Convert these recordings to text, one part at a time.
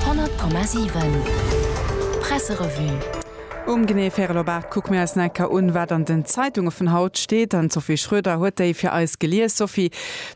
100,7 Presserevue. Um genee Färel-op-Aart kucke mir eis en Ecker un, wat an den Zeitunge vun haut steet. An d'Sophie Schroeder huet déi fir eis gelies. Sophie,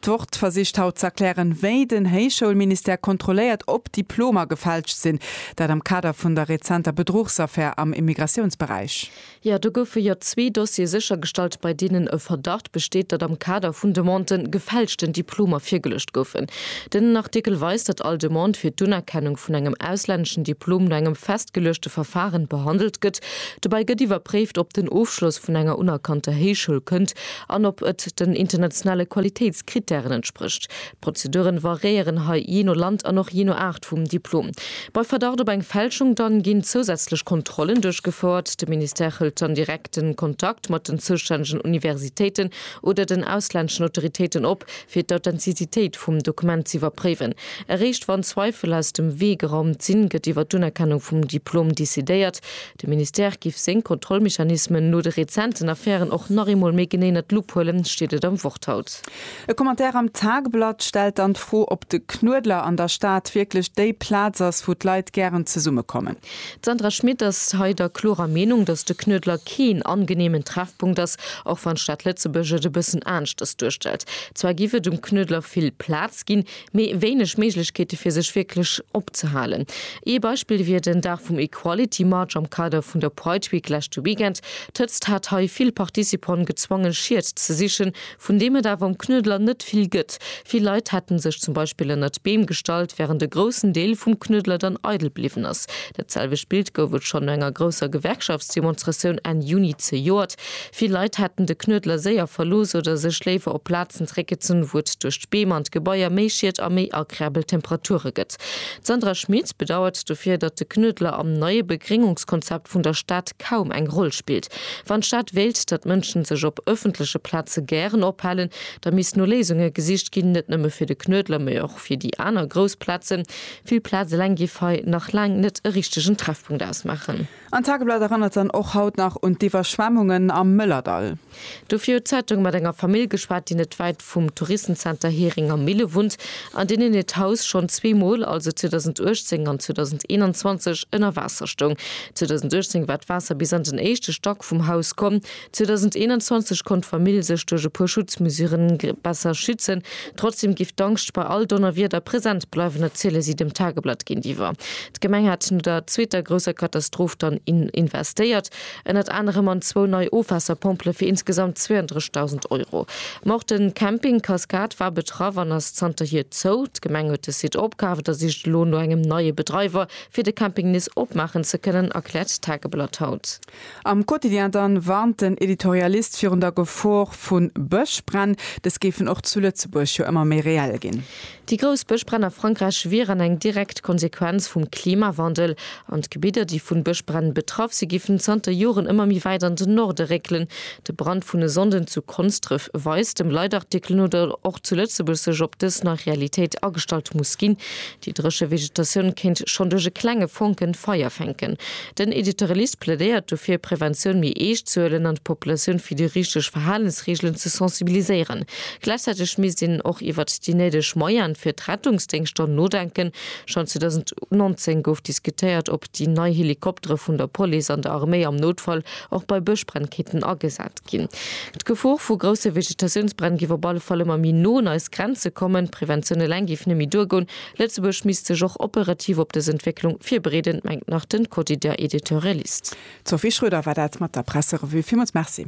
d'Wort versicht haut ze erklären, wéi den Héichschoulministère kontrolléiert, ob Diplomer gefälscht sinn. Dat am Kader vun der rezenter Bedruchsaffär am Immigratiounsberäich. Jo, do goufe jo zwee Dossiere séchergestallt, bei deenen e Verdacht besteet, datt am Kader vun Demandë gefälschten Diplomer virgeluecht goufen. Den Artikel weist, datt all Demande fir d'Unerkennung vun engem auslänneschen Diplom no engem festgeluechte Verfaren behandelt gëtt. Dobäi gëtt iwwerpréift, ob den Ofschloss vun enger unerkannter Héichschoul kënnt an ob et den internationale Qualitéitskrittären entsprécht. D'Prozeduren variéieren hei jee no Land an och jee no Aart vum Diplom. Bei Verdacht op eng Fälschung dann ginn zousätzlech Kontrollen duerchgefouert. De Ministère hëlt dann direkten Kontakt mat den zoustännegen Universitéiten oder den auslänneschen Autoritéiten op, fir d'Authentizitéit vum Dokument z'iwwerpréiwen. Eréischt wann Zweifel aus dem Wee geraumt sinn, gëtt iwwer d'Unerkennung vum Diplom decidéiert. De Ministère giff seng Kontrollmechanismen no de rezenten Affären och nach eemol méi genee ënnert d'Lupp huelen, steet et am Wort haut. E Commentaire am Tagblatt stellt dann d'Fro, ob de Knuedler an der Stad wierklech déi Plaz ass, wou d'Leit gären zesummekommen. D'Sandra Schmit ass hei der klorer Meenung, datt de Knuedler keen angeneemen Treffpunkt ass, och wann d'Stad Lëtzebuerg et e bëssen aneschters duerstellt. Zwar giff et um Knuedler vill Plaz ginn, mee wéineg Méiglechkeete fir sech wierklech opzehalen. Ee Beispill wier den Dag vum Equality March am Kader vun der Pride Week leschte Weekend. D'Hëtzt hat hei vill Participanten gezwongen, Schied ze sichen, vun deem et awer um Knuedler net vill gëtt. Vill Leit hätten sech zum Beispill ënnert d'Beem gestallt, wärend e groussen Deel vum Knuedler dann eidel bliwwen ass. Dat selwecht Bild gouf et schonn no enger grousser Gewerkschaftsdemonstratioun Enn Juni zejoert. Vill Leit hätten de Knuedler séier verlooss oder sech léiwer op Plazen zeréckgezunn, wou et duerch d'Beem an d'Gebaier méi Schiet a méi agreabel Temperature gëtt. D'Sandra Schmit bedauert dofir, datt de Knuedler am neie Begréngungskonzept vun der Stad kaum eng Roll spillt. Wann d'Stad wéilt, datt Mënschen sech op ëffentleche Plaze gären ophalen, da misst no Léisunge gesicht ginn, net nëmme fir de Knuedler, mee och fir déi aner grouss Plazen. Vill Plaz eleng géif hei nach laang net e richtegen Treffpunkt ausmaachen. An d'Tageblatt erënnert dann och haut nach un d'Iwwerschwemmungen am Mëllerdall. Dofir huet d'Zeitung mat enger Famill geschwat, déi net wäit vum Touristenzenter Heringer Mille wunnt, an deenen hiert Haus schonn zwee Mol, also 2018 an 2021, ënner Waasser stoung. 2018 war d'Waasser bis an den éischte Stack vum Haus komm. 2021 konnt d'Famill sech duerch e puer Schutzmesuren besser schützen. Trotzdeem géif d'Angscht bei all Donnerwieder present bleiwen, erziele si dem Tageblatt géintiwwer. D'Gemeng hätt no der zweeter grousser Katastroph dann investéiert. Ënnert anerem an zwou nei Ofwaasserpompele fir insgesamt 32.000 Euro. Ma och de Camping Cascade war betraff an ass zanterhier zou. D'Gemeng huet de Site opkaaft a sicht elo no engem neie Bedreiwer, fir de Camping nees opmaachen ze kënnen, erkläert d'Tageblatt haut. Am Quotidien dann warnt den Editorialist virun der Gefor vu Bëschbränn. Dës géifen och zu Lëtzebuerg jo ëmmer méi reell ginn. Déi grouss Bëschbränn a Frankräich wieren eng direkt Konsequenz vum Klimawandel. An d'Gebidder, déi vun Bëschbränn betraff si, giffen zanter Joren ëmmer méi wäit an den Norde réckelen. De Brand vun e Sonnden zu Konsdref weist dem Leitartikel no, datt och zu Lëtzebuerg sech op dës nei Realitéit agestallt muss ginn. Déi dréche Vegetatioun kéint schonn duerch e klenge Fonken Feier fänken. Den Editorialist plädéiert dofir, Preventioun méi eescht ze huelen an d'Populatioun fir déi richteg Verhalensreegelen ze sensibiliséieren. Gläichzäiteg misst een och iwwert déi néideg Moyene fir d'Rettungsdéngschter nodenken. Schonn 2019 gouf diskutéiert, ob déi nei Helikoptere vun der Police an der Arméi am Noutfall och bei Bëschbränn kéinten agesat ginn. D'Gefor vu grousse Vegetatiounsbränn giff op alle Fall ëmmer méi no un eis Grenze kommen. Preventioun eleng giff net méi duergoen. Lëtzebuerg misst sech och operativ op dës Entwécklung virbereeden, mengt nach den Quotidien Editorialist. D'Sophie Schroeder war dat mat der Presserevue. Villmools Merci.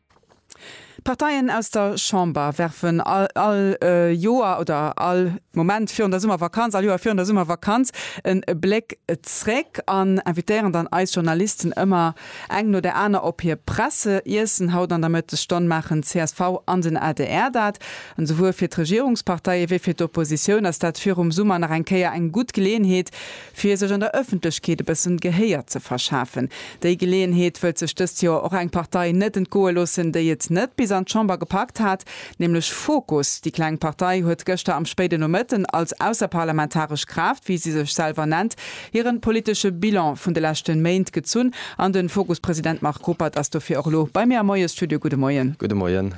D'Parteien aus der Chamber werfen all Joer oder all Moment virun der Summervakanz, all Joer virun der Summervakanz en Bléck zréck an invitéieren dann eis Journalisten ëmmer eng no der aner op hir Presseiessen. Haut an der Mëttesstonn maachen csv an den adr dat. An esouwuel fir d'Regierungsparteie wéi fir d'Oppositioun ass dat virum Summer nach eng Kéier eng gutt Geleeënheet Fir sech an der Ëffentlechkeet e bëssen Gehéier ze verschafen. Déi Geleeënheet wëllt sech dëst Joer och eng Partei net entgoe loossen, déi et net bis an d'Chamber gepackt hat, nämlech Fokus. Déi kleng Partei huet gëschter am spéiden Nomëtten als ausserparlamentaresch Kraaft, wéi si sech selwer nennt, hiren politesche Bilan vun de leschten Méint gezunn an den Fokus-President Marc Ruppert ass dofir och elo bei mir am Moiesstudio. Gudde Moien. Gudde Moien.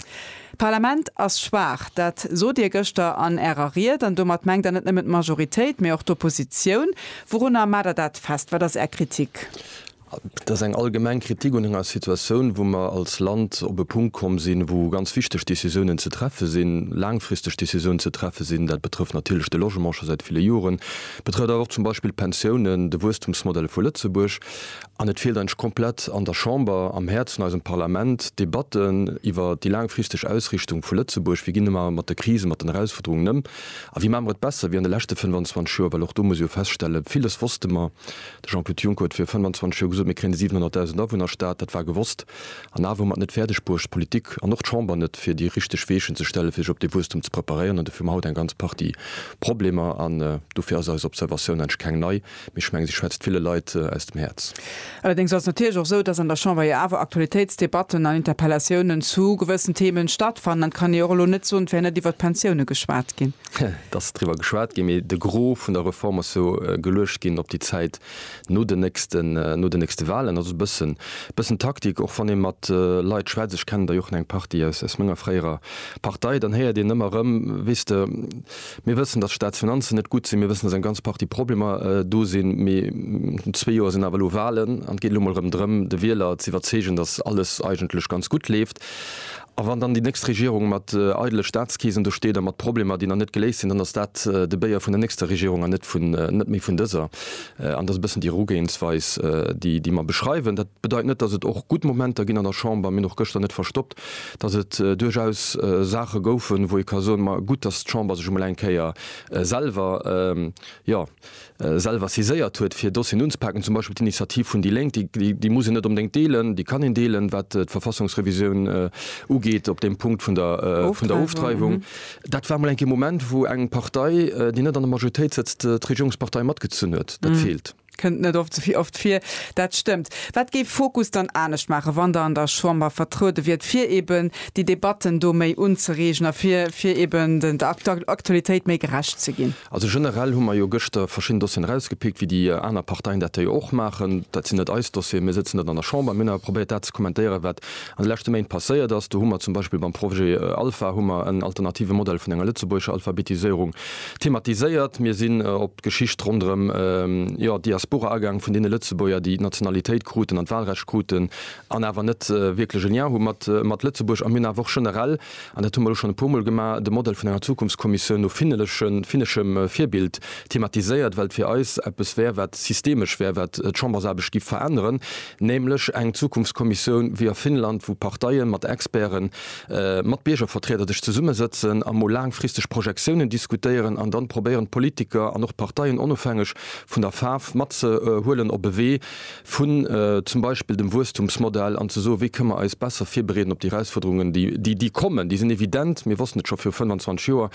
D'Parlament ass schwaach, dat sot Dir gëschter an Ärer Ried, an domat mengt Der net nëmmen d'Majoritéit, mee och d'Oppositioun. Wourunner maacht Der dat fest? Wat ass Är Kritik? Dat ass eng allgemeng Kritik un enger Situatioun, wou mer als Land op e Punkt komm sinn, wou ganz wichteg Decisiounen ze treffe sinn, laangfristeg Decisiounen ze treffe sinn. Dat betrëfft natierlech de Logement scho säit ville Joren, betrëfft awer och zum Beispill d'Pensiounen, de Wuesstumsmodell vu Lëtzebuerg. An et feelt eidg komplett an der Chamber, am Häerz vun eisem Parlament, Debatten iwwer déi laangfristeg Ausrichtung vu Lëtzebuerg. Wéi ginn mer mat de Krisen, mat den Erausfuerderungen ëm? A wéi maache mer et besser wéi an de leschte 25 Joer? Well och do muss ee jo feststellen, Villes wosste mer. De Jean-Claude Juncker huet vir 25 Joer gesot, mir kréien e 700.000 Awunnerstaat. Dat war gewosst. An awer hu mer et net fäerdeg bruecht, d'Politik an och d'Chamber net, fir déi richteg Weechen ze stellen, fir sech op dee Wuesstum ze preparéieren. An dofir hu mer haut eng ganz Partie Problemer. An dofir ass eis Observatioun, eidg keng nei. Mee ech mengen, si schwätzt ville Leit aus dem Häerz. Allerdéngs ass et natierlech och esou, dass an der Chamber jo awer Aktualitéitsdebatten an Interpellatiounen zu gewëssen Themen stattfannen. An et kann ee jo och elo net soen, et wär net iwwert d'Pensioune geschwat ginn. Et ass driwwer geschwat ginn, mee de Gros vun der Reform ass jo geluecht ginn op déi Zäit no den nächsten, no den nächste Wahlen. Ass e bëssen, bëssen Taktik, och wann ee mat Leit schwätzt, ech kennen der jo och nach eng Partie aus, aus menger fréierer Partei, dann héiert een ëmmer erëm, weess de, Mir wëssen, dass d'Staatsfinanzen net gutt sinn. Mir wëssen, dass eng ganz Partie Problemer do sinn. Mee an zwee Joer sinn awer elo Wahlen an et geet elo emol erëm drëm, de Wieler ze iwwerzeegen, dass alles eigentlech ganz gutt leeft. A wann dann déi nächst Regierung mat eidele Staatskeesen do steet a mat Problemer, déi nach net geléist sinn, dann ass dat de Béier vun der nächster Regierung an net méi vun dëser. An dat ass e bëssen déi Erugehensweis, déi mer beschreiwen. Bedeit net, datt et och gutt Momenter ginn an der Chamber. Mir hunn och gëschter net verstoppt, datt et duerchaus Saache goufen, wou ee ka soen, ma gutt, datt d'Chamber sech emol eng Kéier selwer, jo, selwer saiséiert huet, fir Dossieren unzepaken, zum Beispill d'Initiativ vun déi Lénk, déi muss een net onbedéngt deelen, déi kann een deelen, wat d'Verfassungsrevisioun ugeet op deem Punkt vun der Ofdreiwung. Dat war emol eng Kéier e Moment, wou eng Partei, déi net an der Majoritéit sëtzt, d'Regierungspartei matgezunn huet. Dat feelt. Kënnt net oft esouvill oft vir, dat stëmmt. Wat géif Fokus dann anescht maachen, wann Der an der Chamber vertruede wiert, fir eben déi Debatten do méi unzereegen a fir fir eben der Aktualitéit méi gerecht ze ginn? Also generell hu mer jo gëschter verschidden Dossieren erausgepickt, wéi déi aner Parteien dat jo och maachen. Dat sinn net eis Dossieren, mir sëtzen net an der Chamber. Mir hunn awer probéiert dat ze kommentéieren, wat an de leschte Méint passéiert ass. Do hu mer zum Beispill beim Projet Alpha hu mer en alternative Modell vun enger lëtzebuergescher Alphabetiséierung thematiséiert. Mir sinn op. D'Geschicht ronderëm jo Diaspora-Agang vun deene Lëtzebuerger, déi d'Nationalitéit kruten an d'Wahlrecht kruten an awer net wierklech e Lien hu mat Lëtzebuerg. A mir hunn awer och generell, an dat hu mer elo schonn e puermol gemaach, de Modell vun enger Zukunftskommissioun no finneschem Virbild thematiséiert, well et fir eis eppes wär, wat systemesch wär, wat d'Chambersaarbecht giff veränneren, nämlech eng Zukunftskommissioun wéi a Finnland, wou Parteien mat Experten, mat Biergervertrieder sech zesummesëtzen a mol laangfristeg Projektiounen diskutéieren an dann probéieren d'Politiker an och d'Parteien onofhängeg vun der Faarf matzehuelen op e Wee vun zum Beispill dem Wuesstumsmodell an ze soen, wéi kënne mer eis besser virbereeden op déi Erausfuerderungen déi kommen. Déi sinn evident, mir wossten et scho viru 25 Joer.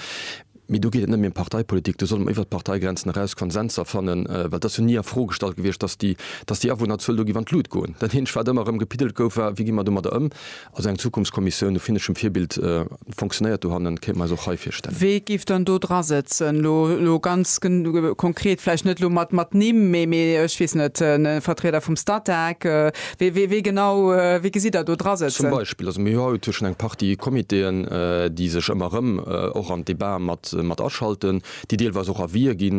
Mee do geet et net méi ëm Parteipolitik, do solle mer iwwert d'Parteigrenzen eraus Konsenser fannen, well et ass jo ni a Fro gestallt gewiescht, dass déi, dass déi Awunnerzuel do géif an d'Lut goen. Dat eenzegt, wat ëmmer erëm gepiddelt gouf, war, wéi gi mer domadder ëm? Also eng Zukunftskommissioun no finneschem Virbild fonctionnéiert dohannen, kéinte mer eis och hei virstellen. Wee géif dann do dra sëtzen? Lo, lo ganz konkret, vläicht net elo mat, mat Nimm, mee, mee ech weess net, e Vertrieder vum Statec, Wie genau, wie gesitt Der do dra Zum sëtzen? Beispill, also mir hu haut hu schon eng Partie Comitéen, déi sech ëmmer erëm och an d'Débat mat, mat aschalten, déi deelweis och Avisë gi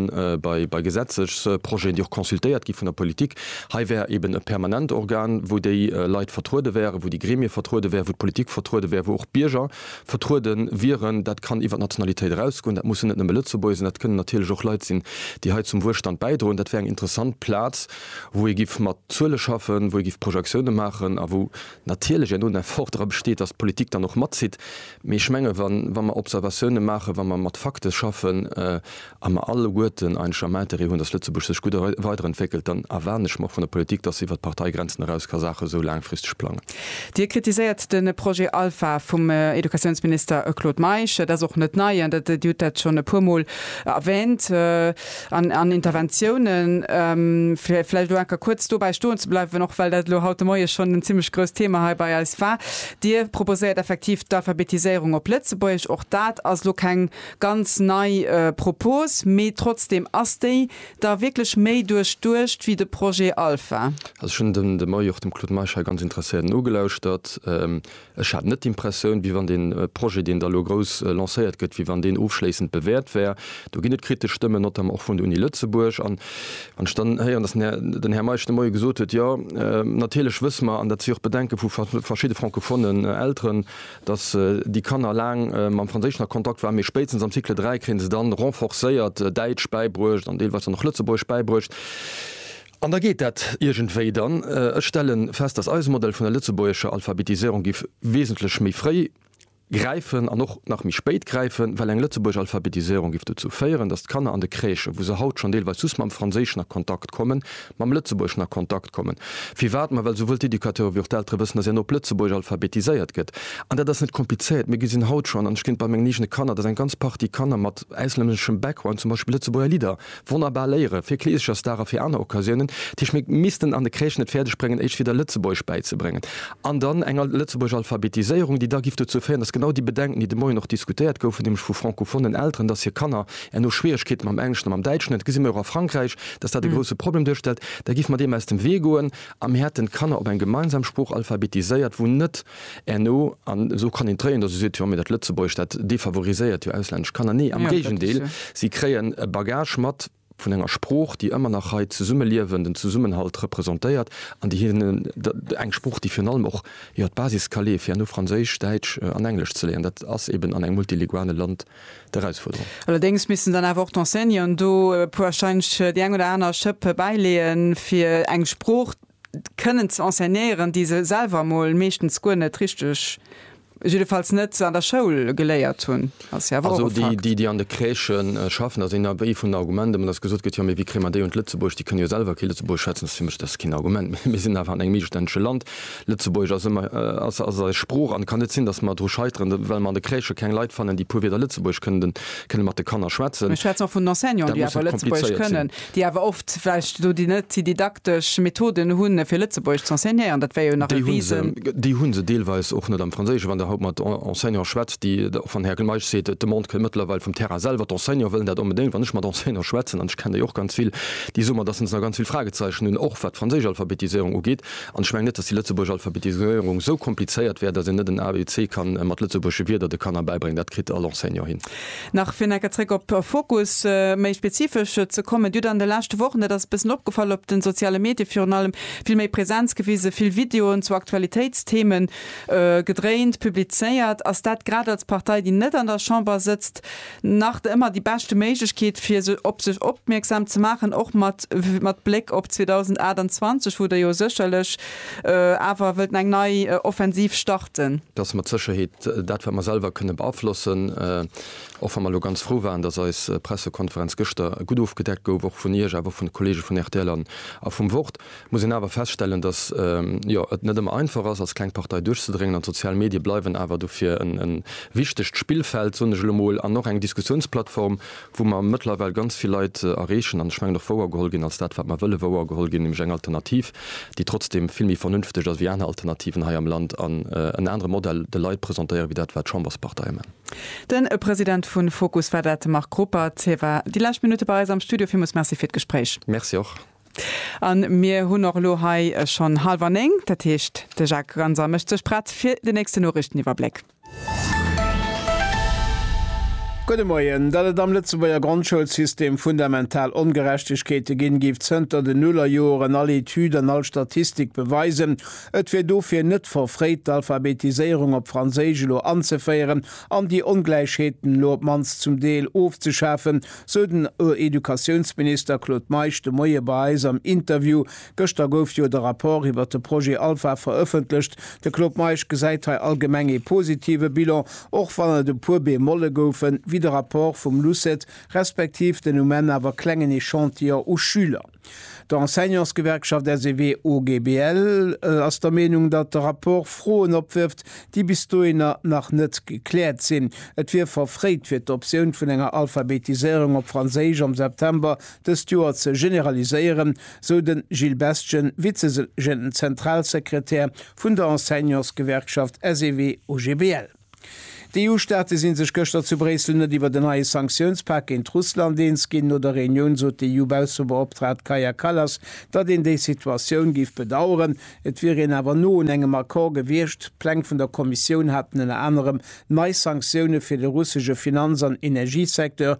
bei, bei Gesetzesprojeten, déi och consultéiert gi vun der Politik. Hei wär eeben e permanent Organ, wou déi Leit vertruede wären, wou déi Gremie vertruede wären, wou d'Politik vertruede wär, wou och d'Bierger vertruede wieren. Dat kann iwwert d'Nationalitéit erausgoen, dat mussen net nëmme Lëtzebuerger sinn, dat kënnen natierlech och Leit sinn, déi hei zum Wuelstand bäidroen. Dat wär eng interessant Plaz. wou ee giff mat Zuele schaffen, wou ee giff Projektioune maachen a wou natierlech en Effort dra besteet, datt d'Politik dann och matzitt. Mee ech menge wa mer Observatioune maachen, wa mer mat Fakte schaffen a mer alleguerten eigentlech am Interêt hunn, datt Lëtzebuerg sech gutt weiderentwéckelt, dann erwaarden ech mer och vun der Politik, datt se iwwert d'Parteigrenzen eraus ka Saache sou laangfristeg plangen. Dir kritiséiert de Projet Alpha vum Educatiounsminister Claude Meisch. Dat ass och net nei an Dir hutt dat schonn e puermol erwähnt. an, an Interventiounen, fir vläicht elo enker kuerz dobäi stoen ze bleiwen, och well dat elo haut de Moie schonn en zimlech grousst Thema hei bei eis war. Dir proposéiert effektiv d'Alphabetiséierung op Lëtzebuergesch. Och dat ass elo keng ganz nei Propos, mee trotzdeem, ass déi da wierklech méi duerchduecht wéi de Projet Alpha? Also ech hunn de Moie och dem Claude Meisch hei ganz interesséiert nogelauschtert. Ech hat net d'Impressioun, wéi wann dee Projet, deen da elo grouss lancéiert gëtt, wéi wann deen ofschléissend bewäert wär. Do ginn et kritesch Stëmmen, notamment och vun der Uni Lëtzebuerg. An wann ech dann héieren, datt den Här Meisch de Moie gesot huet, Jo, natierlech wësse mer, an dat si och d'Bedenke vu verschidde francophonen Elteren, datt déi Kanner laang mam Franséischen a Kontakt waren, mee spéitstens am Cycle 3 kréie se dann renforcéiert Däitsch bäibruecht an deelweis dann och Lëtzebuergesch bäibruecht. An da geet dat iergendwéi dann. Ech stelle fest, dass eise Modell vun der lëtzebuergescher Alphabetisierung giff wesentlech méi fréi gräifen an och nach méi spéit gräifen, well eng lëtzebuergesch Alphabetisierung giff dozou féieren, dass d'Kanner an de Crèchen, wou se haut schonn deelweis just mam Franséischen a Kontakt kommen, mam Lëtzebuergeschen a Kontakt kommen. Firwat? Ma well souwuel d'Educateure wéi och d'Eltere wëssen, dass een op Lëtzebuergesch alphabetiséiert gëtt. An dat ass net komplizéiert. Mir gesinn haut schonn, an ech ginn et bei mengen eegene Kanner, dass eng ganz Partie Kanner mat auslänneschem Background zum Beispill Lëtzebuerger Lidder Wonnerbar Léiere fir Kleesecher Star a fir aner Occasiounen. Tisch, Mir missten an de Crèchen et fäerdeg bréngen éischt wieder Lëtzebuergesch bäizebréngen. An dann eng Lëtzebuergesch Alphabetiséierung, déi da giff dozou féieren, dass genau déi Bedenken, déi de Moien och diskutéiert goufen, nämlech vu francophonen Elteren, dass hir Kanner erno Schwieregkeete mam Engleschen a mam Däitschen hunn, et gesi mir och a Frankräich, dass dat e grousse Problem duerstellt, da giffe mer deem aus dem Wee goen a mir hätten d'Kanner op eng gemeinsam Sprooch alphabetiséiert, wou net. Erno, an esou kann een d'Réien, dass ee seet, jo mee dat Lëtzebuergesch, dat defavoriséiert jo auslännesch Kanner. Nee, am Géigendeel, si kréien e Bagage mat vun enger Sprooch, déi ëmmer nach hei d'Zesummeliewen, den Zesummenhalt representéiert an déi hinnen eng Sprooch, déi virun allem och, jo, d'Basis ka leeë fir herno Franséisch, Däitsch an Englesch ze léieren. Dat ass eeben an engem multilinguale Land d'Erausfuerderung. Allerdéngs missten dann awer och d'Enseignanten do e puer, warscheinlech déi eng oder aner Schëpp bäileeën, fir eng Sprooch, kënnen ze enseignéieren, déi se selwer mol meeschtens guer net richteg, jiddefalls net an der Schoul geléiert hunn, ass jo awer och e Fakt. Also déi, déi an de Crèchë schaffen, dat ass ee vun de Argumenter, mä datt gesot gëtt, jo, mee wéi kréie mer déi un d'Lëtzebuerg, déi kënne jo selwer kee Lëtzebuergesch schwätzen, ass fir mech, dat ass keen Argument. Mee mir sinn awer an engem mittelstännege Land, Lëtzebuergesch ass ëmmer, ass eis Sprooch an et kann net sinn, datt mer dru scheiteren, well mer an de Crèchë keng Leit fannen, déi e puer Wierder Lëtzebuergesch kënnten, kënne mat de Kanner schwätzen. Ech schwätzen och vun Enseignanten, déi awer Lëtzebuergesch kënnen. Déi awer oft vläicht elo déi net déi didaktesch Methoden hunn, fir Lëtzebuergesch ze enseignéieren. Dat wär jo nach e Risen. Déi hu se deelweis och net am Franséischen. Wann Der haut mat Enseignante schwätzt, déi, och wann Här Gmeisch seet, d'Demande kënn mëttlerweil vum Terrain selwer, d'Enseignante wëllen dat onbedéngt, wann ech mat Enseignante schwätzen, an ech kenn déi och ganz vill, déi soe mer, dass se nach ganz vill Fragezeichen hunn, och wat d'franséisch Alphabetiséierung ugeet. An ech mengen net, dass déi lëtzebuergesch Alphabetiséierung esou komplizéiert wär, dass een net en ABC kann mat lëtzebuergesche Wierder de Kanner bäibréngen. Dat kritt all Enseignant hin. Nach fir necker zréck op Fokus méi spezifesch ze kommen, Dir hutt an de leschte Wochen, dat ass e bëssen opgefall, op de soziale Medie virun allem vill méi Präsenz gewise, vill Videoen zu Aktualitéitstheme gedréint, publizéiert. Ass dat grad als Partei, déi net an der Chamber sëtzt, nach ëmmer déi beschte Méiglechkeet fir op sech opmierksam ze maachen, och mat Bléck op 2028, wou Der jo sécherlech awer wëllt eng nei Offensiv starten? dat wat mer selwer kënne beaflossen, och wa mer elo ganz frou waren, datt eis Pressekonferenz gëschter gutt ofgedeckt gouf, och vun Iech awer och vun de Kollege vun rtl a vum Wort, muss een awer feststellen, datt, jo, et net ëmmer einfach ass als kleng Partei duerchzedréngen an d'sozial Medie bleiwen awer dofir e wichtegt Spillfeld, soen ech elo mol, an och eng Diskussiounsplattform, wou mer mëttlerweil ganz vill Leit erreechen an, ech mengen, och wouergeholl ginn als dat, wat mer wëlle wouergeholl ginn, nämlech eng Alternativ, déi trotzdeem vill méi vernünfteg ass wéi aner Alternativen hei am Land an en anere Modell de Leit presentéieren, wéi dat, wat d'Chambersparteie man. Den President vun Fokus war dat, de Marc Ruppert. Hie war déi lescht Minutte bei eis am Studio. Villmools Merci fir d'Gespréich. Merci och. A mir hunn och elo hei schonn halwer néng. Dat heescht, de Jacques Ganser mécht sech prett fir den nächsten Noriichteniwwerbléck. Gudde Moien. Datt et am Lëtzebuerger Grondschoulsystem fundamental Ongerechtegkeete ginn, géif zënter den Nullerjoeren all Etüd an all Statistik beweisen. Et wier dofir net verfréit, d'Alphabetiséierung op Franséisch elo anzeféieren an déi Ongläichheeten elo op d'mannst zum Deel ofzeschafen, sou den Educatiounsminister Claude Meisch de Moie bei eis am Interview Gëschter gouf jo de Rapport iwwert de Projet Alpha verëffentlecht. De Claude Meisch gesäit hei allgemeng ee positive Bilan, och wann et e puer Bemolle goufen, wéi de Rapport vum LUCET, respektiv den um Enn awer klengen Echantillon u Schüler. D'Enseignantsgewerkschaft SEW-OGBL ass der Meenung, datt de Rapport Froen opwërft, déi bis dohinner nach net gekläert sinn. Et wier verfréit fir d'Optioun vun enger Alphabetiséierung op Franséisch am September dëst Joer ze generaliséieren, sou de Gilles Bestgen, Vize-Generalsekretär vun der Enseignantsgewerkschaft SEW-OGBL. D'EU-Staate si sech gëschter zu Bréissel net iwwert en neie Sanktiounspak géint Russland eens ginn. No der Reunioun sot d'EU-Baussebeoptraagt Kaja Kallas, datt een déi Situatioun géif bedaueren. Et wier een awer no un engem Accord gewiescht. D'Pläng vun der Kommissioun haten ënner anerem nei Sanktioune fir de russesche Finanz an Energiesecteur,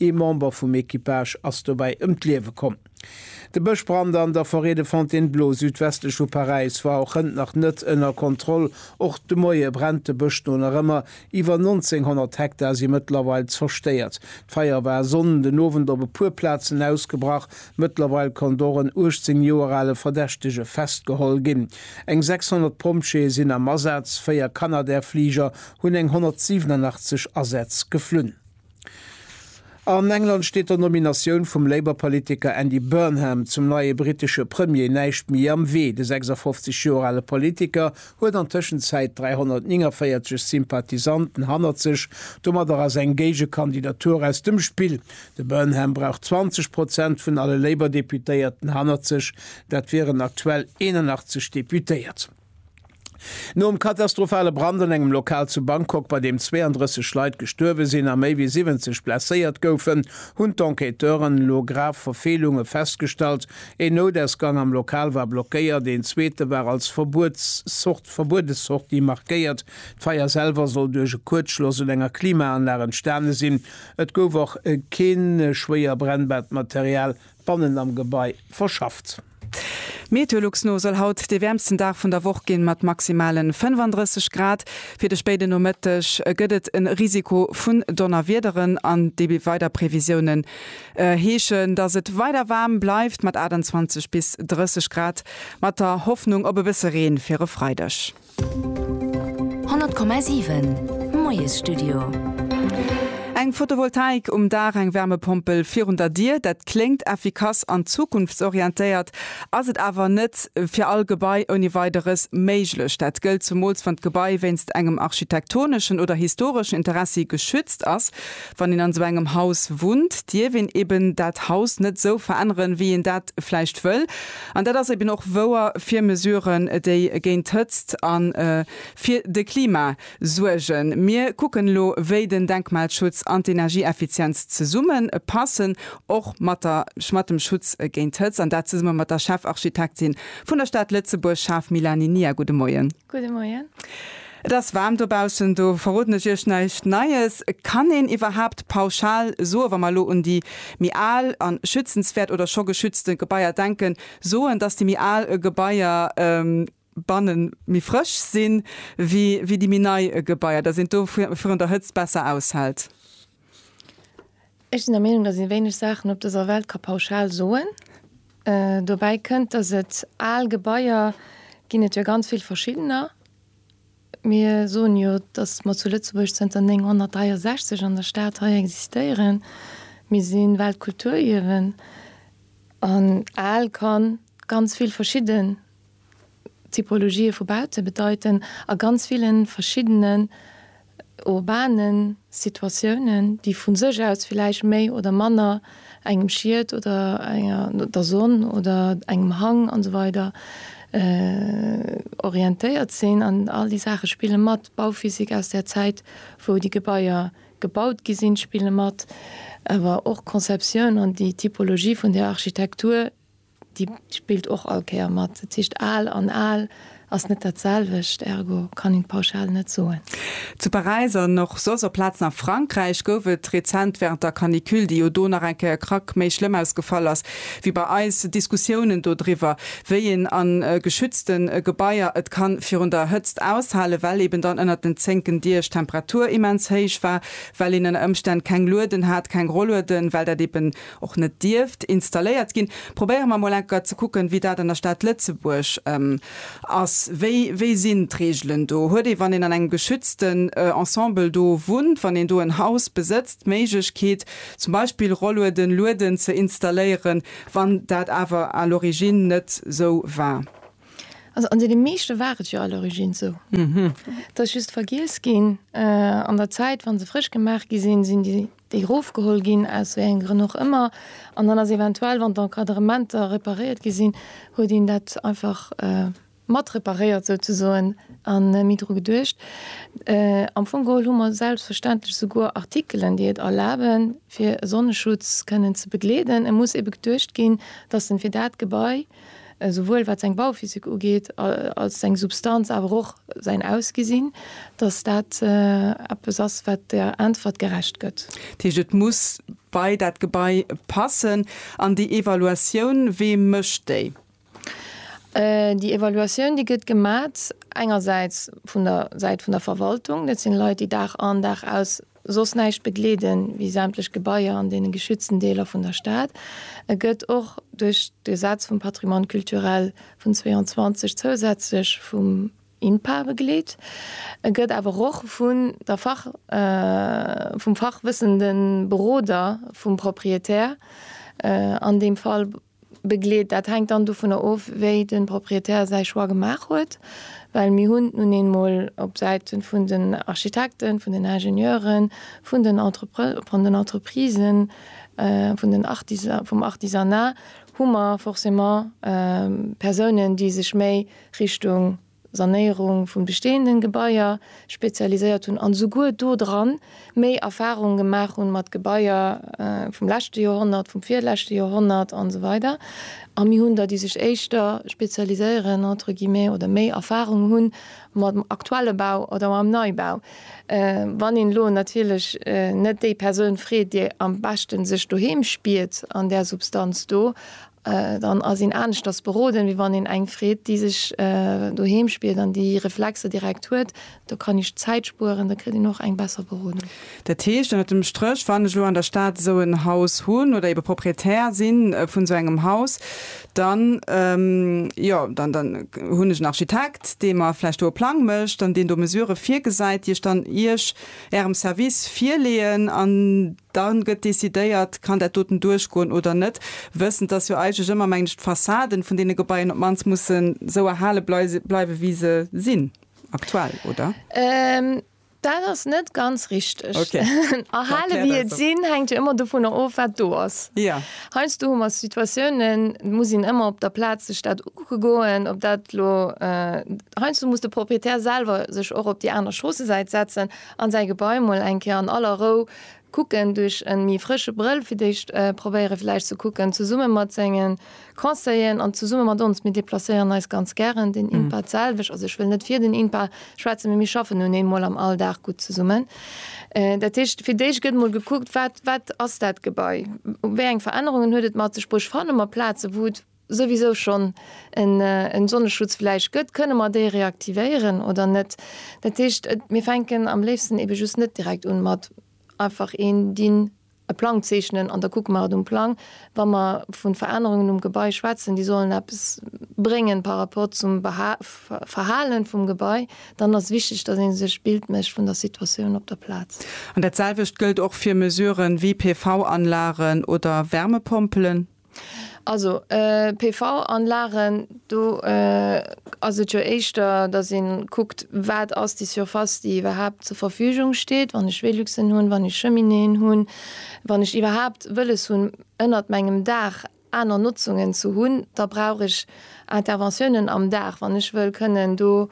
Ee Member vum Equipage ass dobäi ëm d'Liewe komm. De Bëschbrand an der Forêt de Fontainebleau, südwestlech vu Paräis, war och hënt nach net ënner Kontroll. Och de Moie brennt de Bësch do nach ëmmer. Iwwer 1.900 Hektar si mëttlerweil zerstéiert. D'Feier war Sonn den Owend op e puer Plazen ausgebrach. Mëttlerweil konnt och en 18 Joer ale Verdächtege festgeholl ginn. Eng 600 Pompjeeë sinn am Asaz, véier Canadair-Fliger hunn eng 187 Asätz geflunn. An England steet der Nominatioun vum Labour-Politiker Andy Burnham zum neie brittesche Premier näischt méi am Wee. De 56 Joer ale Politiker huet an Tëschenzäit 349 Sympathisanten hannert sech. Domadder ass eng Géigekandidatur aus dem Spill. De Burnham brauch 20 Prozent vun alle Labour-Deputéierten hannert sech. Dat wieren aktuell 81 Deputéiert. Nom katastrophale Brand an engem Lokal zu Bangkok, bei deem 32 Leit gestuerwe sinn a méi wéi 70 blesséiert goufen, hunn d'Enquêteuren elo grav Verfeelunge festgestallt. Een Noudausgang am Lokal war blockéiert, een zweete war als verbuede Sortie markéiert. D'Feier selwer soll duerch e Kuerzschloss un enger Klimaanlag entstane sinn. Et gouf och kee schwéier brennbaart Material Bannen am Gebai verschafft. Meteolux no soll haut dee wäermsten Dag vun der Woch ginn, mat maximalen 35 Grad. Fir de spéiden Nomëtteg gëtt et en Risiko vun Donnerwiederen an déi weider Previsiounen heeschen dass et weider waarm bleift mat 28 bis 30 Grad, mat der Hoffnung op e bësse Reen fir e Freideg. 100,7 Moiesstudio. Eng Photovoltaik um Daach, eng Wärmepompel virun der Dier, dat kléngt effikass an zukunftsorientéiert, ass et awer net fir all Gebai ouni Weideres méiglech. Dat gëllt zumools, wann d'Gebai wéinst engem architektoneschen oder historeschen Interessi geschützt ass. Wann een an esou engem Haus wunnt, dierf een eben dat Haus net esou veränneren, wéi een dat vläicht wëll. An dat ass eben och wouer fir Mesuren, déi géint d'Hëtzt a fir de Klima suergen. Mir kucken elo, wéi den Denkmalschutz an d'Energieeffizienz zesumme passen, och mat dem Schutz géint d'Hëtzt, an dat zesumme mat der Chefarchitektin vun der Stad Lëtzebuerg, Schaf Mélanie Nia. Gudde Moien. Gudde Moien. Et ass waarm dobaussen, do verroden ech Iech näischt Neies. Kann een iwwerhaapt pauschal soen, wa mer elo un déi méi al a schützenswäert oder scho geschützte Gebaier denken, soen, dass déi méi al Gebaier banne méi frësch si wéi déi méi nei Gebaier, dass een do virun der Hëtzt besser aushält? Ech sinn der Meenung, datt ee wéineg Saachen op dëser Welt ka pauschal soen. Dobäi kënnt, datt et al Gebaier ginn et jo ganz vill verschiddener. Mir soen jo, datt mer zu Lëtzebuerg zënter 963 an der Stad hei existéieren. Mir si Weltkulturierwen an al kann ganz vill verschidde Typologië vu Baute bedeiten a ganz ville verschiddene urbanen Situatiounen, déi vu sech aus villäicht méi oder manner engem Schiet oder enger, der Sonn oder engem Hang an esou weider orientéiert sinn. An all déi Saache spille mat. D'Bauphysik aus där Zäit, wou déi Gebaier gebaut gi sinn, spille mat. Awer och d'Conceptioun an déi Typologie vun där Architektur. Déi spillt och all Kéier mat. Dat heescht, al an al ass net dat selwecht, ergo kann een d'Pauschal net soen. Zu Paräis an och soss op Plazen a Frankräich gouf et rezent wärend der Canicule, déi jo do nach eng Kéier e Krack méi schlëmm ausgefall ass wéi bei eis, Diskussiounen do driwwer, wéi een a geschützte Gebaier et ka virun der Hëtzt aushalen, well eben dann ënnert den zénken Diech d'Temperatur immens héich war, well een ënner Ëmstänn keng Lueden hat, keng Rollueden, well dat eben. och net dierft installéiert ginn, probéiere mer emol enker ze kucken, wéi dat an der Stad Lëtzebuerg ass. Wéi, wéi sinn d'Reegelen do? Huet ee, wann een an engem geschützten Ensemble do wunnt, wann een do en Haus besëtzt, d'Méiglechkeet, zum Beispill Rollueden, Lueden ze installéieren, wann dat awer à l'origine net sou war? Also an deene meeschte war et jo à l'origine sou. Et ass just vergiess ginn an der Zäit, wa se frësch gemaach gi sinn, sinn déi déi erofgeholl ginn, aus wéi engem Grënn och ëmmer, an dann ass eventuell, wann d'Encadrementer reparéiert gi sinn, huet een dat einfach mat reparéiert souzesoen a méi dru geduecht. Am Fong geholl hu mer selbstverständlech souguer Artikelen, déi et erlaben, fir e Sonneschutz kënnen ze begleeden. E muss ebe geduecht ginn, dass en fir dat Gebai, esouwuel wat seng Bauphysik ugeet als seng Substanz, awer och säin Ausgesinn, datt dat eppes ass, wat der Äntwert gerecht gëtt. Dat heescht, et muss bei dat Gebai passen. An déi Evaluatioun, wee mécht déi? Déi Evaluatioun, déi gëtt gemat engersäits vun der Säit vun der Verwaltung. Dat sinn Leit, déi Dag an, Dag aus soss näischt begleeden wéi sämtlech Gebaier an deene geschützten Deeler vun der Stad. E gëtt och duerch d'Gesetz vum Patrimoine culturel vun 22 zousätzlech vum INPA begleet. E gëtt awer och vun der Fach vum fachwëssende Beroder vum Proprietär, an deem Fall begleet. Dat hänkt dann dovunner of, wéi de Propriétaire säi Choix gemaach huet, well mir hunn nun eemol op Säite vun den Architekten, vun den Ingenieuren, vun den Entreprisen, vum Artisanat hu mer forcément Persounen, déi sech méi Richtung Sanéierung vun bestehenden Gebaier spezialiséiert hunn an esouguer do dran méi Erfahrungen gemaach hunn mat Gebaier vum leschte Joerhonnert, vum virleschte Joerhonnert an esou weider a mir hunn der déi sech éischter spezialiséieren entre guillemets oder méi Erfahrung hunn mam aktuelle Bau oder mam Neibau. Wann een elo natierlech net déi Persoun freet déi am beschte sech doheem spiert an där Substanz do Dann ass een aneschters beroden, wéi wann een eng freet, déi sech doheem spiert an déi Reflexer direkt huet. Do kann ee Zäit spueren, da kritt een och eng besser Berodung. Dat heescht ënnert dem Stréch, wann ech elo an der Stad esou en Haus hunn oder ebe Proprietär sinn vun esou engem Haus, dann, jo, dann hunn ech en Architekt, dee mer vläicht do e Plang mécht an deen do Mesurë virgesäit, déi ech dann Iech, Ärem Service virleeën an. Dann gëtt decidéiert, kann dat doten duerchgoen oder net, wëssend, dass jo eigentlech ëmmer, mengen ech, d'Fassaden vun deene Gebaien op d'mannst mussen esou erhale bleiwen, wéi se sinn aktuell, oder? Dat ass net ganz richteg. Ok. Da erkläert eis dat. Erhale wéi et sinn, hänkt jo ëmmer dovunner of, wat do ass. Jo. Heiansdo hu mer Situatiounen, et muss een ëmmer op der Plaz sech dat ukucke goen, ob dat elo, heiansdo muss de Proprietär selwer sech och op déi aner Stroossesäit setzen, An säi Gebai mol eng Kéier an aller Rou kucken, duerch en méi frësche Brëll fir d'éischt probéieren villäicht ze kucken, zesummen mat sengen Conseilleren an zesummen mat ons. Mir déplacéieren eis ganz gären, den INPA d'selwecht, also ech wëll net fir den INPA schwätzen, mee mir schaffen nun eemol am Alldag gutt zesummen. Dat heescht, fir d'éischt gëtt mol gekuckt, wat ass dat Gebai, wéi eng Verännerungen huet et mat sech bruecht, fanne mer Plazen, wou et souwisou schonn en Sonneschutz vläicht gëtt, kënne mer déi reaktivéieren oder net? Dat heescht, mir fänken am léifsten ebe just net direkt un mat einfach een dinn, e Plang zeechnen an da kucke mer et um Plang. Wa mer vu Verännerungen um Gebai schwätzen, déi sollen eppes bréngen par rapport zum Verhale vum Gebai, dann ass wichteg, datt ee sech e Bild mécht vun der Situatioun op der Plaz. An dat selwecht gëllt och fir Mesuren wéi PV-Anlagen oder Wärmepompelen? Also PV-Anlagen, do ass et jo éischter, datt ee kuckt, wat ass déi Surface, déi iwwerhaapt zur Verfügung steet, wann ech Veluxen hunn, wann ech Cheminéen hunn, wann ech iwwerhaapt wëlles hunn, ënnert mengem Daach aner Notzungen ze hunn, da brauch ech Interventiounen am Daach, wann ech wëll kënnen do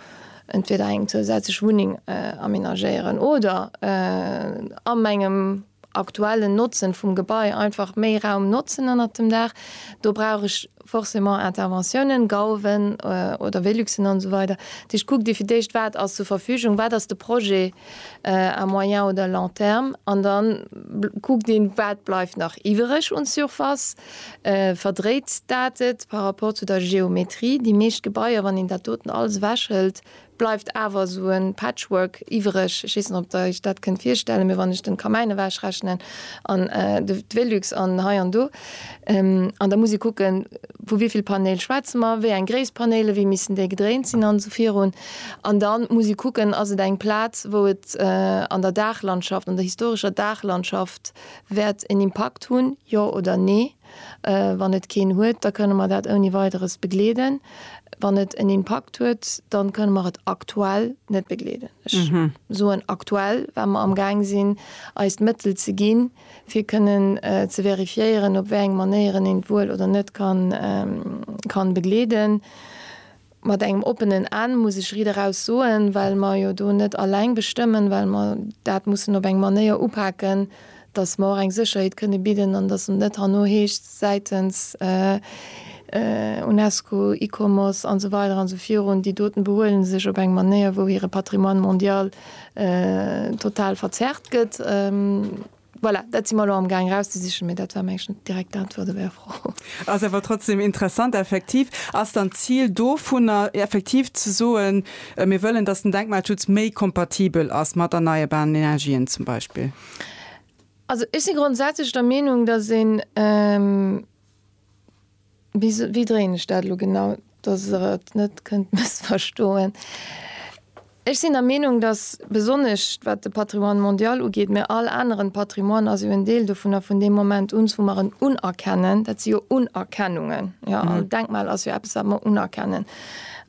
entweder eng zousätzlech Wunneng amenagéieren oder a mengem aktuellen Notzen vum Gebai einfach méi Raum notzen ënnert dem Daach. Do brauch ech forcément Interventiounen, Gauwen oder Veluxen an esou weider. Dat heescht, kuck Dir fir d'éischt, wat ass zur Verfügung, wat ass de Projet à moyen oder long terme an da kuckt een, wat bleift nach iwwereg un Surface, verdréit dat et par rapport zu der Geometrie. Déi meescht Gebaier, wann een dat doten alles ewechhëlt, bleift awer esou e Patchwork iwwereg. Ech weess net, ob der iech dat kënnt virstellen, mee wann ech den Kamäin ewechrechnen an de Velux an hei an do, an da muss ee kucken, vu wéi vill Panéil schwätze mer, wéi eng Gréisst Panéilen, wéi missen déi gedréint sinn an esou virun. An da muss ee kucken, ass et eng Plaz, wou et an der Daachlandschaft, an der historescher Daachlandschaft wäert en Impakt hunn, jo oder nee? Wann et keen huet, da kënne mer dat ouni Weideres begleeden. Wann et en Impakt huet, dann kënne mer et aktuell net begleeden. Ech soen aktuell, well mer amgaang sinn, eis d'Mëttel ze ginn, fir kënnen ze verifiéieren, op wéi eng Manéieren een et wuel oder net kann begleeden. Mat engem oppenen Enn, muss ech rideraus soen, well mer jo do net alleng bestëmmen, well mer dat mussen op eng Manéier upaken, datt mer och eng Sécherheet kënne bidden an datt et net herno heescht säitens UNESCO, Icomos an esou weider an esou virun, déi doten behuelen sech op eng Manéier, wou hire Patrimoine mondial total verzerrt gëtt. Voilà, dat si mer elo amgaang erauszesichen, mee dat war mengen ech d'direkt Äntwert op Är Fro. Ass awer trotzdem interessant. Effektiv ass dann d'Zil dovunner effektiv ze soen, mir wëllen, dass den Denkmalschutz méi kompatibel ass mat erneierbaren Energien zum Beispill. Also ech si grondsätzlech der Meenung, dass een, Wéi dréien ech dat elo genau, dass Der et net kënnt mëssverstoen? Ech sinn der Meenung, dass, besonnesch wat de Patrimoine mondial ugeet, mä all aneren Patrimoine ass jo en Deel dovun, a vun deem Moment un, wou mer en unerkennen, dat si jo Unerkennungen, jo, an Denkmal ass jo eppes, wat mer unerkennen,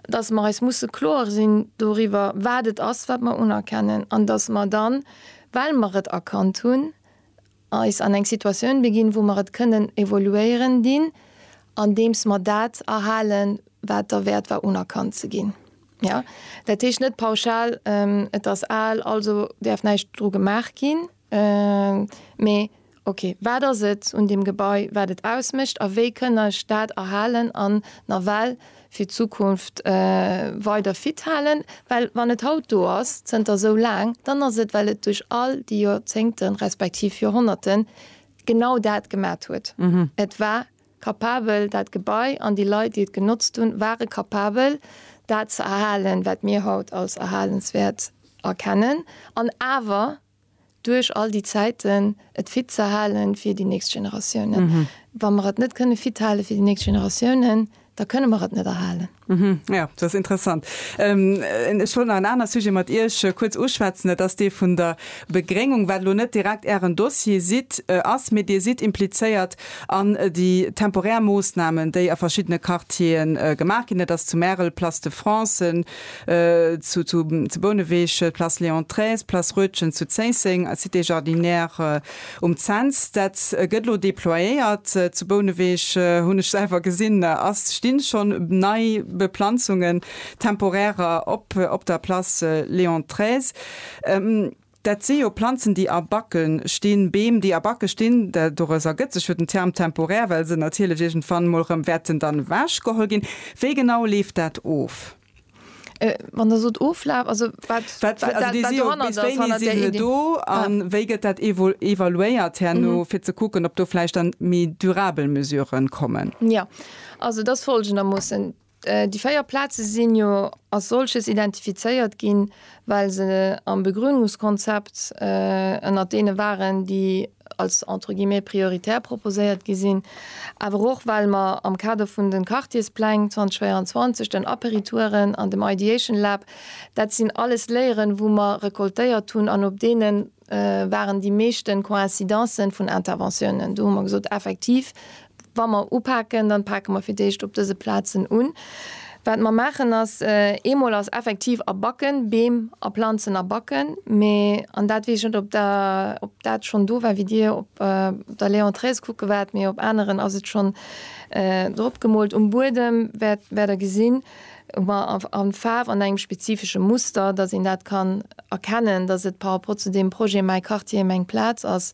dass mer eis musse kloer sinn doriwwer, wat et ass, wat mer unerkennen, an dass mer dann, well mer et erkannt hunn, eis an eng Situatioun beginn, wou mer et kënnen évoluéieren dinn, andeems mer dat erhalen, wat derwäert war unerkannt ze ginn. Jo, dat heescht net pauschal, et ass al, also däerf näischt dru gemaach ginn, mee okay, wat ass et un deem Gebai, wat et ausmécht a wéi kënne ech dat erhalen an nawell fir d'Zukunft weider fit halen, well wann et haut do ass, zënter esou laang, dann ass et well et duerch all déi Joerzéngten, respektiv Joerhonnerten genau dat gemat huet. Et war kapabel, dat Gebai an déi Leit, déi et genotzt hunn, ware kapabel dat ze erhalen, wat mir haut als erhalenswäert erkennen, an awer duerch all déi Zäiten et fit ze halen fir déi nächst Generatiounen. Wa mer et net kënne fit hale fir déi nächst Generatiounen, da kënne mer et net erhalen. Jo, dat ass interessant. Ech wollt nach en anere Sujet mat Iech kuerz uschwätzen, dat ass dee vun der Begréngung, wat elo net direkt Ären Dossier sidd, ass, mee Dir sidd implizéiert an déi temporär Moossnamen, déi a verschiddene Quartiere gemaach ginn, dat ass zu Märel Place de France, zu zu Bouneweg, Place Léon xiii, Place Roetgen zu Zéisseng, Cité Jardinière um Cents. Dat gëtt elo déployéiert zu Bouneweg, hunn ech selwer gesinn, ass stinn schonn nei Beplanzungen, temporärer, op op der Place Léon xiii. Dat si jo Planzen, déi a Backe stinn, Beem, déi a Backe stinn. Dores ergëtt sech jo den Term temporär, well se natierlech iergendwann emol erëm wäerten dann ewechgeholl ginn. Wéi genau leeft dat of? Wann Der sot oflaf, also wat dohannert ass, hannert där Iddi? Bis wéini si se do a wéi gëtt dat evaluéiert herno, fir ze kucken, ob do vläicht dann méi durabel Mesuren kommen? Jo, also et ass folgendermoossen, Déi véier Plaze sinn jo als solches identifizéiert ginn, well se am Begrünungskonzept ënnert deene waren, déi als entre guillemets prioritär proposéiert gi sinn, awer och well mer am Kader vun de Quartierspläng 2024, den Aperitouren an dem Ideation Lab, dat sinn alles Léieren, wou mer recoltéiert hunn an op deene waren déi meeschten Coïncidencen vun Interventiounen. Do hu mer gesot, effektiv, wa mer upaken, dann pake mer fir d'éischt op dëse Plazen un. Wat mer maachen ass, eemol ass effektiv a Backen, Beem a Planzen a Backen, mä, an dat weess ech net ob der, ob dat schonn do war wéi Dir op der Léon Treves kucke waart, mä op aneren ass et schonn drop gemoolt, um Buedem wäert, wäert Der gesinn, ma a Faarf an engem spezifesche Muster, datt een dat kann erkennen, datt et par rapport zu deem Projet Mäi Quartier, meng Plaz ass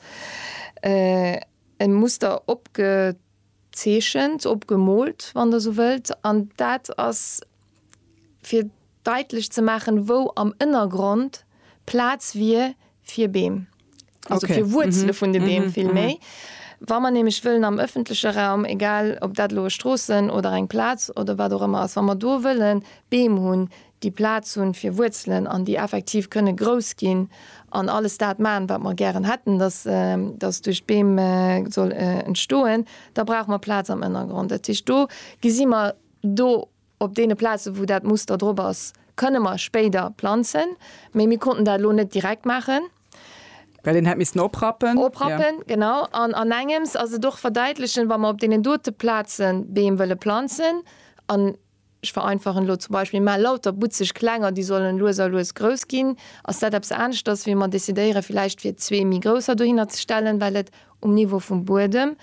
e Muster opgezeechent, opgemoolt, wann Der esou wëllt. An dat ass fir daitlech ze maachen, wou am Ënnergrond Plaz wier fir Beem. also okay. fir Wurzele mhm. vun de Beem mhm. vill mhm. méi. Wa man nämlich wëllen am öffentliche Raum, egal ob dat loe Strossen oder eng Platz oder wat auch immer ass, wann man do wëllen Beem hunn, die Platz hunn fir Wurzelen an die effektiv könne groß ginn an alles dat man, wat man gern hätten, dass äh, das durch Beem äh, soll äh, entstoen, da brauch man Platz am Innergrund. Dat do gesi man do Op deene Plazen, wou dat Muster drop ass, kënne mer spéider planzen. Mee mir konnten dat elo net direkt maachen. Well een hätt missen oprappen. Oprappen, genau. An an engems ass et och verdeitlechen, wa mer op deenen dote Plaze Beem wëlle planzen, an ech vereinfachen elo, zum Beispill maache lauter butzeg kleng an déi sollen lues a lues grouss ginn, ass dat eppes aneschters, wéi mer decidéieren, villäicht fir zwee méi grousser dohinner ze stellen, well et um Niveau vum Buedem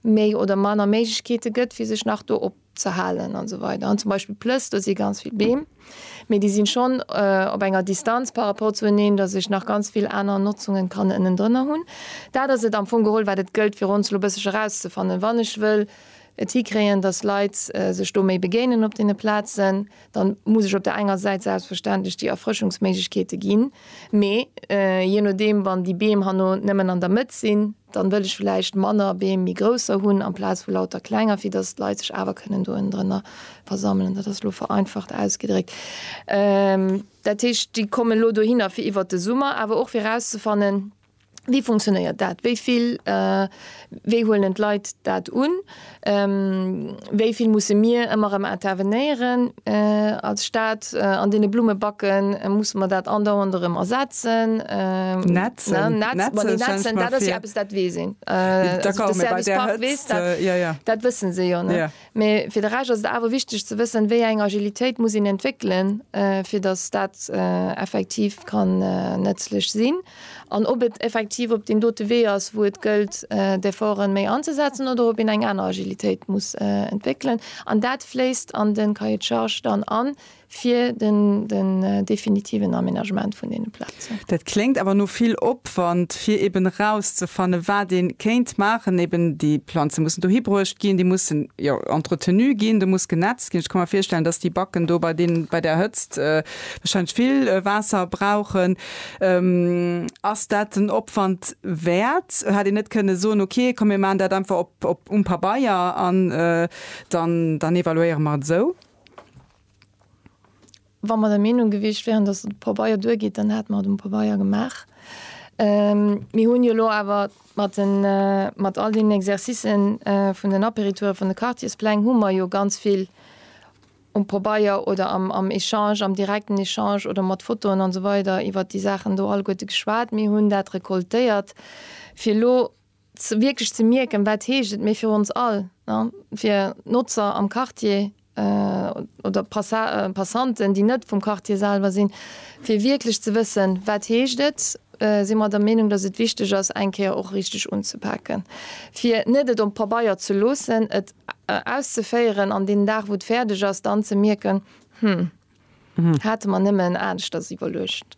méi oder manner Méiglechkeete gëtt fir sech nach do opzehalen an esou weider an zum Beispill Plëss, do si ganz vill Beem, mee déi sinn schonn op enger Distanz par rapport zu eneen, datt ech nach ganz vill aner Notzungen kann ënnendrënner hunn. Dat ass et am Fong geholl wat et gëllt fir ons elo bësseg erauszefannen, wann ech wëll et hikréien, datt Leit sech do méi begéinen op deene Plazen, Da muss ech op där enger Säit selbstverständlech déi Erfrëschungsméiglechkeete ginn, mee jee nodeem, wann déi Beem herno nëmmen an der Mëtt sinn, da wëll ech vläicht manner Beem, méi grousser hunn amplaz vu lauter klenger, fir datt d'Leit sech awer kënnen do ënnendrënner versammelen. Dat ass elo vereinfacht ausgedréckt. Dat heescht, déi kommen elo dohinner fir iwwert de Summer, awer och fir erauszefannen, Wéi funktionéiert dat? Wéi vill, wéi huelen d'Leit dat un? Wéi vill musse mir ëmmer erëm intervenéieren als Stat? An deene Blummebacken musse mer dat andauernd erëm ersetzen. Netzen, netzen, dat ass jo eppes, dat weess een. Dat wësse se jo net. Mee fir de Rescht ass et awer wichteg ze wëssen, wéi eng Agilitéit muss een entwéckelen, fir datt dat effektiv kann nëtzlech sinn, an ob et effektiv op deem dote Wee ass, wou et gëllt, d'Efforte méi anzesetzen, oder ob een eng aner Agilitéit muss entwéckelen. An dat fléisst an de Cahier de charges dann an. fir den definitiven Aménagement vun deene Plazen. Dat kléngt awer no vill Opwand, fir eben erauszefannen, wat ee kéint maachen. Eben déi Planze mussen dohi bruecht ginn, déi mussen, jo, entretenu ginn, do muss genetzt ginn. Ech ka mer virstellen, dass déi Backen do bei deenen, bei där Hëtzt warscheinlech vill Waasser brauchen. Ass dat den Opwand wäert? Hätt een net kënne soen, ok, komm mir maachen dat einfach op, op, um Pabeier an dann, dann evaluéiere mer et esou? Wa mer der Meenung gewiescht wären, datt et um Pabeier duergeet, dann hätte mer et um Pabeier gemaach. Mir hunn jo elo awer mat den, mat all deenen Exercicen vun den Apéritoure vun de Quartierspläng hu mer jo ganz vill um Pabeier oder am, am Echange, am direkten Echange oder mat Fotoen an esou weider iwwert déi Saachen do alleguerte geschwat. Mir hunn dat recoltéiert, fir elo wierklech ze mierken, wat heescht et méi fir ons all, fir Notzer am Quartier oder Passanten, déi net vum Quartier selwer sinn, fir wierklech ze wëssen, wat heescht et, si mer der Meenung, datt et wichteg ass, eng Kéier och richteg unzepaken, fir net et op Pabeier ze loossen, et auszeféieren an deen Dag, wou et fäerdeg ass, dann ze mierken, Hm, hate mer nëmmen aneschters iwwerluecht.